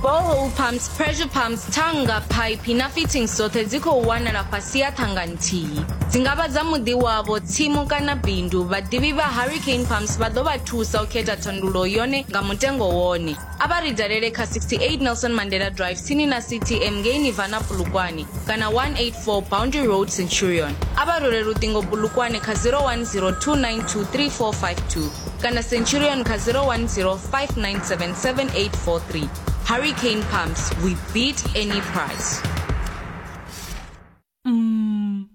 borehole pumps pressure pumps thanga phaiphi na fittings dzoṱhe dzi khou wanala fhasi ya thanga nthihi dzi nga vha dza muḓi wavho tsimu kana bindu vhaḓivhi vha hurricane pumps vha ḓo vha thusa u khetha thandulo yone nga mutengo wone a vha ri dalele kha 68 nelson mandela drive tsini na ctm ngei nivana pulukwane kana 184 boundary road centurion a vha role luṱingo pulukwane kha 0102923452 kana centurion kha 010 5977 hurricane pumps we beat any price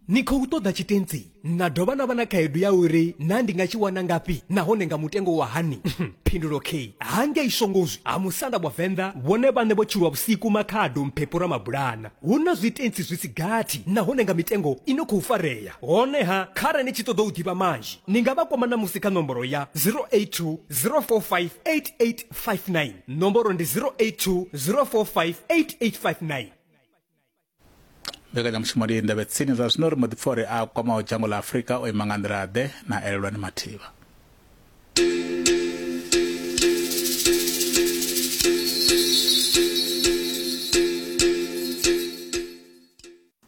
ni khou ṱoḓa tshitentsi na dovha na vha na khaedu ya uri na ndi nga tshi wana ngafhi nahone nga mutengo wa hani phindulo k hangei shongozwi ha musanda wa venḓa vhone vhaṋe vho tshulwa vhusiku makhado mphepho ra mabulana hu na zwitentsi zwi si gathi nahone nga mitengo i no khou farea honeha khare ni tshi ṱoḓa u ḓivha manzhi ni nga vha kwama ṋamusi kha nomboro ya 082 045 8859 nomboro ndi 082 045 8859 mbekanyamushumo ndi ndavhe tsini zwa zwino ri mbo ḓi pfa uri a kwamaho dzhango ḽa afurika o ima nga nḓila ḓe na elelwani mathivha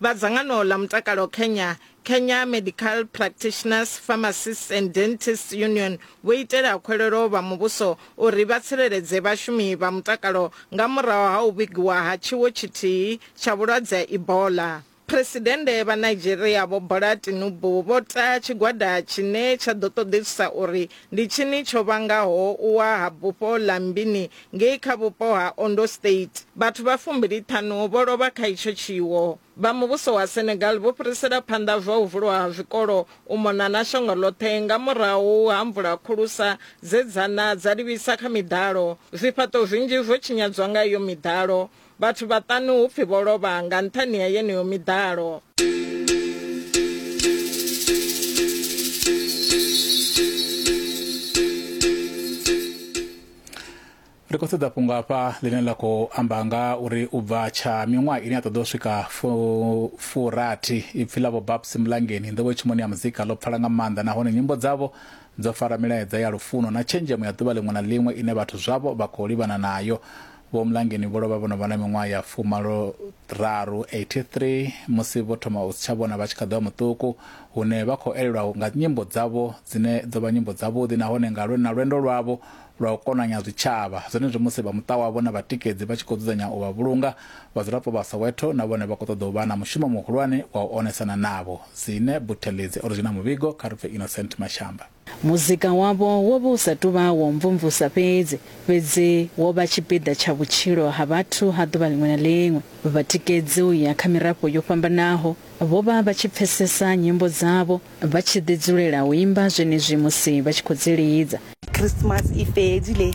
Vha dzangano ḽa mutakalo Kenya, Kenya Medical Practitioners, Pharmacists and Dentists Union, vho itela khwelelo vha muvhuso uri vha tsireledze vhashumi vha mutakalo nga murahu ha u vhigiwa ha tshiwo tshithihi tsha vhulwadze ha Ebola. Phresidennde vha Nigeria Vho Bola Tinubu vho ta tshigwada tshine tsha ḓo ṱoḓisisa uri Ndi tshini tsho vhangaho u wa ha bufho ḽa Mbini ngei kha vhupo ha Ondo State? Vhathu vha fumbili-ṱhanu vho lovha kha itsho tshiwo. Vha muvhuso wa Senegal vho fhirisela phanḓa zwa u vulwa ha zwikolo u mona na shango ḽoṱhe nga murahu ha mvula khulusa dze dza na dza livhisa kha miḓalo. Zwifhaṱo zwinzhi zwo tshinyadzwa nga iyo miḓalo. Vhathu vhaṱanu hu pfi vho lovha nga nṱhani ha yeneyo miḓalo. ri khou sedza fhungo hafha ḽine ḽa khou amba nga uri u bva tsha miṅwaha ine ya ṱoḓa u swika furathi ipfi ḽa vho babs mulangeni nḓowetshumoni ya muzika ḽo pfala nga maanḓa nahone nyimbo dzavho dzo fara milaedza ya lufuno na tshenzhemo ya ḓuvha ḽiṅwe na ḽiṅwe ine vhathu zwavho vha khou livhana nayo Vho Mlangeni vho lovha vho no vha na miṅwaha ya fumalo raru, 83, musi vho thoma u si tsha vhona vha tshi kha ḓi vha muṱuku, hune vha khou elelwa nga nyimbo dzavho dzine dzo vha nyimbo dzavhuḓi nahone nga lwe na lwendo lwavho lwa u konanya zwitshavha. Zwenezwi musi vha muṱa wavho na vhatikedzi vha tshi khou dzudzanya u vha vhulunga, vhadzulapo vha Soweto na vhone vha khou ṱoḓa u vha na mushumo muhulwane wa u onesana navho. Zine Buthelezi o ri zwi na muvhigo kha ri pfe Innocent Mashamba. Muzika wavho wo vha u sa tou vha wa u mvumvusa fhedzi, fhedzi wo vha tshipiḓa tsha vhutshilo ha vhathu ha ḓuvha ḽiṅwe na ḽiṅwe. Vhatikedzi u ya kha mirafho yo fhambanaho vho vha vha tshi pfesesa nyimbo dzavho, vha tshi ḓi dzulela u imba zwenezwi musi vha tshi khou dzi lidza. Khrismasi i fhedzile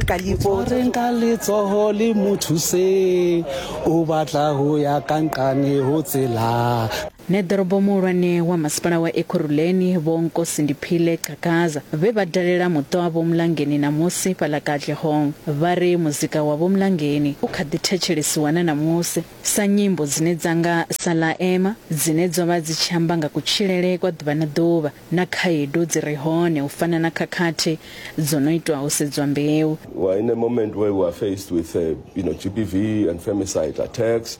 ka ḽifho. Re nga letsoho ḽi mu thuse, u batla ho ya ka nqane ho tsela. Nṋe ḓorobo muhulwane wa masipala wa Ekurhuleni Vho Nkosindiphile Cakaza vhe vha dalela muṱa wa Vho Mlangeni ṋamusi fhaḽa Katlehong vha ri muzika wa Vho Mlangeni u kha ḓi thetshelesiwa na ṋamusi sa nyimbo dzine dza nga sa Ḽa Ema dzine dzo vha dzi tshi amba nga kutshilele kwa ḓuvha na ḓuvha na khaedu dzi re hone u fana na khakhathi dzo no itwa ho sedzwa mbeu. We're in a moment where we are faced with uh, you know, GBV and femicide attacks.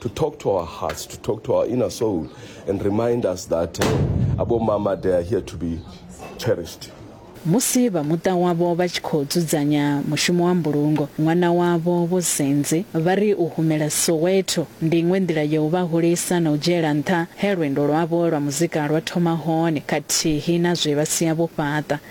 to talk to our hearts, to talk to our inner soul, and remind us that uh, Abo Mama, they are here to be cherished. musi vha muṱa wavho vha tshi khou dzudzanya mushumo wa mbulungo ṅwana wavho vho senze vha ri u humela soweto ndi iṅwe nḓila ya u vha hulisa na u dzhiela nṱha he lwendo lwavho lwa muzika lwa thoma hone khathihi na zwe vha sia vho fhaṱa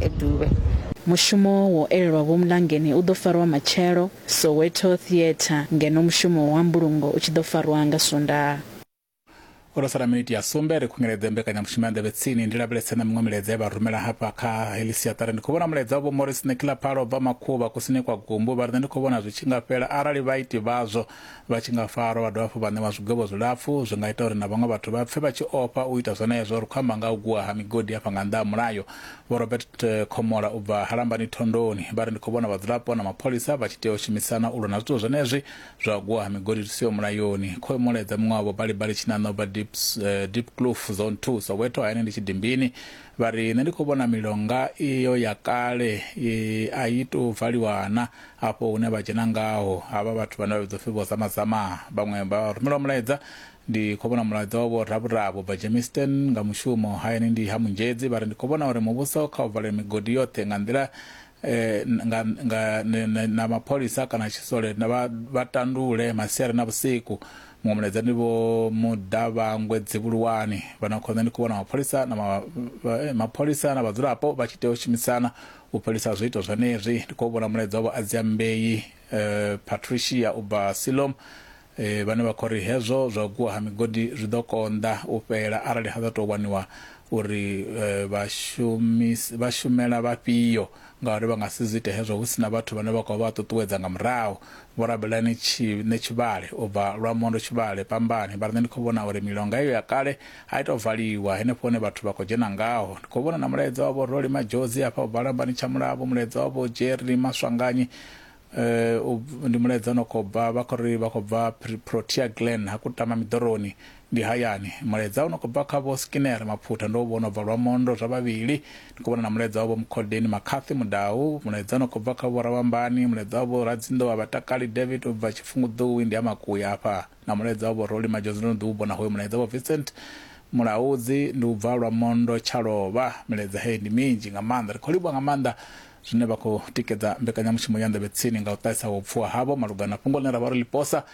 e Duvhe. Mushumo wo elelwa Vho Mlangeni u ḓo farwa matshelo Soweto Theatre ngeno mushumo wa mbulungo u tshi ḓo farwa nga Swondaha. Ho no sala miniti ya sumbe ri khunyeledze mbekanyamushumo ya Nḓevhe Tsini. Ndi lavhelese na miṅwe milaedza ye vha rumela hafha kha heḽi siaṱari. Ndi khou vhona mulaedza wa Vho Morris Nekilapalo vha Makhuvha kusini kwa Gumbu vha ri nṋe ndi khou vhona zwi tshi nga fhela arali vhaiti vhazwo Vha tshi nga farwa vha dovha hafhu vha ṋewa zwigwevho zwilapfu, zwi nga ita uri na vhaṅwe vhathu vha pfe vha tshi ofha u ita zwenezwo. Ri khou amba nga ha u gwiwa ha migodi hafha nga nnḓa ha mulayo. Vho Robert Khomola u bva ha Lambani Thondoni vha ri, Ndi khou vhona vhadzulapo na mapholisa vha tshi tea u shumisana u lwa na zwithu zwenezwi zwa u gwiwa ha migodi zwi siho mulayoni. Khoemola edza muṅwe wavho Balibali Tshinanḓa u bva Diepkloof Zone Two, Soweto, hayani ndi Tshidimbini. Vha ri, Nṋe ndi khou vhona milonga iyo ya kale i, a i tou valiwa na. Afho hune vha dzhena ngaho, havha vhathu vhane vha vhidzwa u pfi Vho-Zamazama, vhaṅwe vha rumelwa mulaedza. Ndi khou vhona mulaedza wa Vho-Ravhuravhu, Bba Germiston, nga mushumo. Hayani ndi ha Munzhedzi. Vha ri, Ndi khou vhona uri muvhuso kha u valwe migodi yoṱhe nga nḓila eh, nga, nga, ne, ne, na mapholisa kana tshisole vha, vha tandule masiari na vhusiku muṅwe mulaedza ndi vho mudavhangwe dzivhuluwani vhana khonḓa ndi khou vhona mapholisa na ma, ma, eh, mapholisa na vhadzulapo vha tshi tea u shumisana u fhelisa zwiito zwenezwi ndi khou vhona mulaedza wavho adziambei eh, patricia u bva silom Vhane vha khou ri hezwo zwa u gwiwa ha migodi zwi ḓo konḓa u fhela arali ha ḓa tou waniwa uri vha shumela vhafhio ngauri vha nga si zwi ite hezwo hu si na vhathu vhane vha khou vha ṱuṱuwedza nga murahu, vho rabelani Tshine Tshivhale u bva Lwamondo Tshivhale Pambani vha ri, Nṋe ndi khou vhona uri milonga iyo ya kale a i tou valiwa henefho hune vhathu vha khou dzhena ngaho. Ndi khou vhona na mulaedza wa Vho Rolly Madjozi hafha u bva Lambani Tshamulavho, mulaedza wa Vho Jerry Maswanganyi Eh, ndi mulaedza ono khou bva vha khou ri vha khou bva protea glen ha kutama miḓoroni ndi hayani mulaedza ono khou bva kha vho skinner maphutha ndo vhona bva lwa mondo zwa vhavhili ndi khou vhona na mulaedza wa vho mukhodeni makhathi mudau mulaedza ono khou bva kha vho ravhambani mulaedza wa vho radzinḓo wa vhatakali david u bva tshifhunguḓuwi ndi ha makuya afha Na mulaedza wa vho Rolly Madjozi ndo no ḓi u vhona hoyo mulaedza. Vho Vincent Mulaudzi ndi u bva Lwamondo Tshalovha. Milaedza heyi ndi minzhi nga maanḓa. Ri khou livhuwa nga maanḓa zwine vha khou tikedza mbekanyamushumo ya Nḓevhe Tsini nga u ṱahisa vhupfuwa havho malugana na fhungo ḽine ra vha ro ḽi posa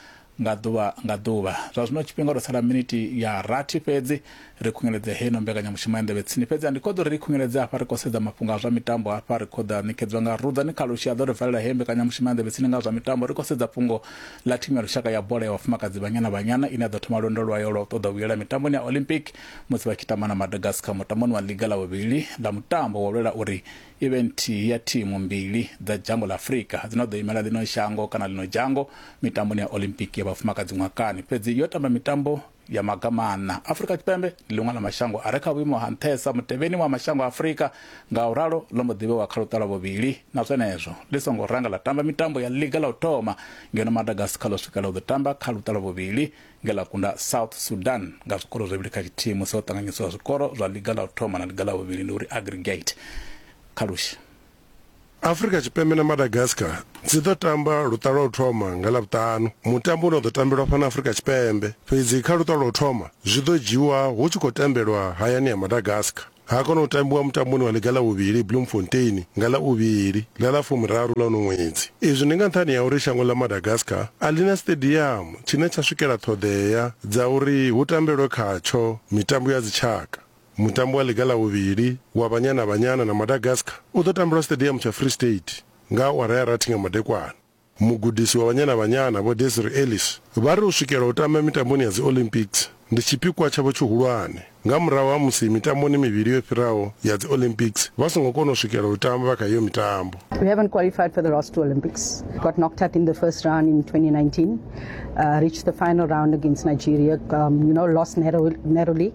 nga ḓuvha nga ḓuvha. Zwa zwino tshifhinga ho tou sala minithi ya rathi fhedzi Ri khungeledze heino mbekanyamushumo ya Nḓevhe Tsini fhedzi a ndi khoḓo ri i khungeledze hafha ri khou sedza mafhungo a zwa mitambo hafha ri khoḓa a ṋekedzwa nga Rudzani Khalushi a ḓo ri valela heyo mbekanyamushumo ya Nḓevhe Tsini nga zwa mitambo ri khou sedza fhungo ḽa thimu ya lushaka ya bola ya vhafumakadzi Banyana Banyana ine ya ḓo thoma lwendo lwayo lwa u ṱoḓa u vhuyela mitamboni ya Olympic musi vha tshi tamba na Madagascar mutamboni wa ḽiga ḽa vhuvhili ḽa mutambo wa u lwela uri i vhe nthihi ya thimu mbili dza dzhango ḽa Afrika dzine ḓo imela ḽino shango kana ḽino dzhango mitamboni ya Olympic ya vhafumakadzi ṅwakani fhedzi yo tamba mitambo ya maga maṋa. Afrika Tshipembe ndi ḽiṅwe ḽa mashango a re kha vhuimo ha nṱhesa mutevheni wa mashango a Afrika, ngauralo ḽo mbo ḓi vhewa kha luṱa lwa vhuvhili na zwenezwo ḽi songo ranga ḽa tamba mitambo ya ḽiga ḽa u thoma, ngeno Madagascar ḽo swikelela u ḓo tamba kha luṱa lwa vhuvhili nge ḽa kunda South Sudan nga zwikoro zwivhili kha tshithihi musi ho ṱanganyisiwa zwikoro zwa ḽiga ḽa u thoma na ḽiga ḽa vhuvhili, ndi uri aggregate kha lush. Afrika Tshipembe na Madagascar dzi ḓo tamba luṱa lwa u thoma nga Lavhuṱanu. Mutambo une wa ḓo tambelwa fhano Afrika Tshipembe, fhedzi kha luṱa lwa u thoma zwi ḓo dzhiiwa hu tshi khou tambelwa hayani ya Madagascar. Ha kona u tambiwa mutamboni wa ḽiga ḽa vhuvhili Bloemfontein nga ḽa u vhili ḽa ḽa fumiraru ḽa uno ṅwedzi. Izwi ndi nga nṱhani ha uri shango ḽa Madagascar a ḽi na siṱediamu tshine tsha swikela ṱhoḓea dza uri hu tambelwe khatsho mitambo ya dzitshaka. Mutambo wa ḽiga ḽa vhuvhili wa Banyana Banyana na Madagascar u ḓo tambelwa siṱediamu tsha Free State nga awara ya rathi nga madekwana. Mugudisi wa Banyana Banyana, Vho Desiree Ellis, vha ri u swikela u tamba mitamboni ya dzi Olympics ndi tshipikwa tshavho tshihulwane nga murahu ha musi mitamboni mivhili yo fhiraho ya dzi Olympics vha songo kona u swikela u tamba kha iyo mitambo. We haven't qualified for the last two Olympics. Got knocked out in the first round in 2019. Uh, reached the final round against Nigeria. Um, you know, lost narrow, narrowly.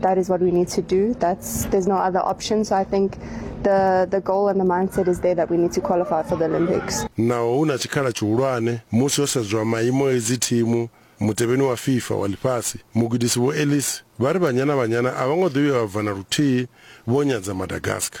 That is what we need to do. That's there's no other option. So I think the the goal and the mindset is there that we need to qualify for the Olympics. Naho hu na tshikhala tshihulwane musi ho sedzwa maimo edzi thimu mutevheni wa FIFA wa ḽifhasi mugudisi vho Ellis vha ri Banyana Banyana a vho ngo ḓo vhuya vha bva na luthihi vho nyadza Madagascar.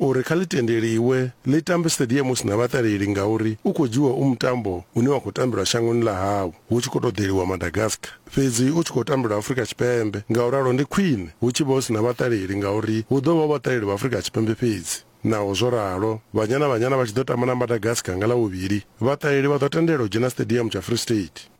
uri kha ḽi tendeliwe ḽi tambe Stadium hu si na vhaṱaleli ngauri u khou dzhiiwa u mutambo une wa khou tambelwa shangoni ḽa hau hu tshi khou tou ḓeliwa Madagascar fhedzi u tshi khou tambelwa Afrika Tshipembe, nga u ralo ndi khwine hu tshi vha hu si na vhaṱaleli ngauri hu ḓo vha hu vhaṱaleli vha Afrika Tshipembe fhedzi. Naho zwo ralo, Banyana Banyana vha tshi ḓo tamba na Madagascar nga Ḽavhuvhili, vhaṱaleli vha ḓo tendelwa u dzhena Stadium tsha Free State.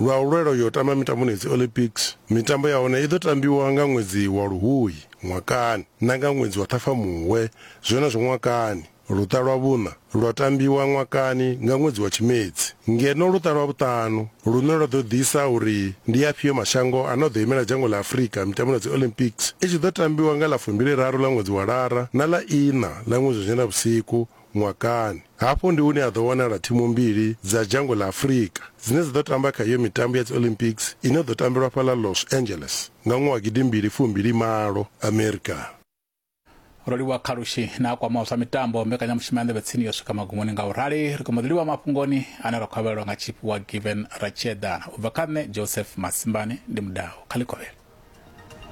Lwa u lwela u yo tamba mitamboni ya dzi-Olympics, mitambo ya hone i ḓo tambiwa nga ṅwedzi wa Luhuhi ṅwakani na nga ṅwedzi wa Ṱhafamuhwe zwenezwo ṅwakani. Luṱa lwa vhuṋa lwa tambiwa ṅwakani nga ṅwedzi wa Tshimedzi, ngeno luṱa lwa vhuṱanu, lune lwa ḓo ḓisa uri ndi afhio mashango ane a ḓo imela dzhango ḽa Afrika mitamboni ya dzi-Olympics, i tshi ḓo tambiwa nga ḽa fumbili-raru ḽa ṅwedzi wa Lara na ḽa iṋa ḽa ṅwedzi wa Nyendavhusiku ṅwakani. Hafhu ndi hune ha ḓo wanala thimu mbili dza dzhango ḽa Afrika dzine dza ḓo tamba kha iyo mitambo ya dziOlympics ine ya ḓo tambelwa fhaḽa Los Angeles nga ṅwaha wa gidimbili fumbili malo, Amerika. Rolivhuwa Khalushi na a kwamaho zwa mitambo, mbekanyamushumo ya Nḓevhe Tsini yo swika magumoni nga u rali. Ri khou mbo ḓi livhuwa mafhungoni ane ra khou a vhalelwa nga tshipfi wa Given Ratshiedana. U bva kha nṋe Joseph Masimbani, ndi Mudau kha ḽikovhela.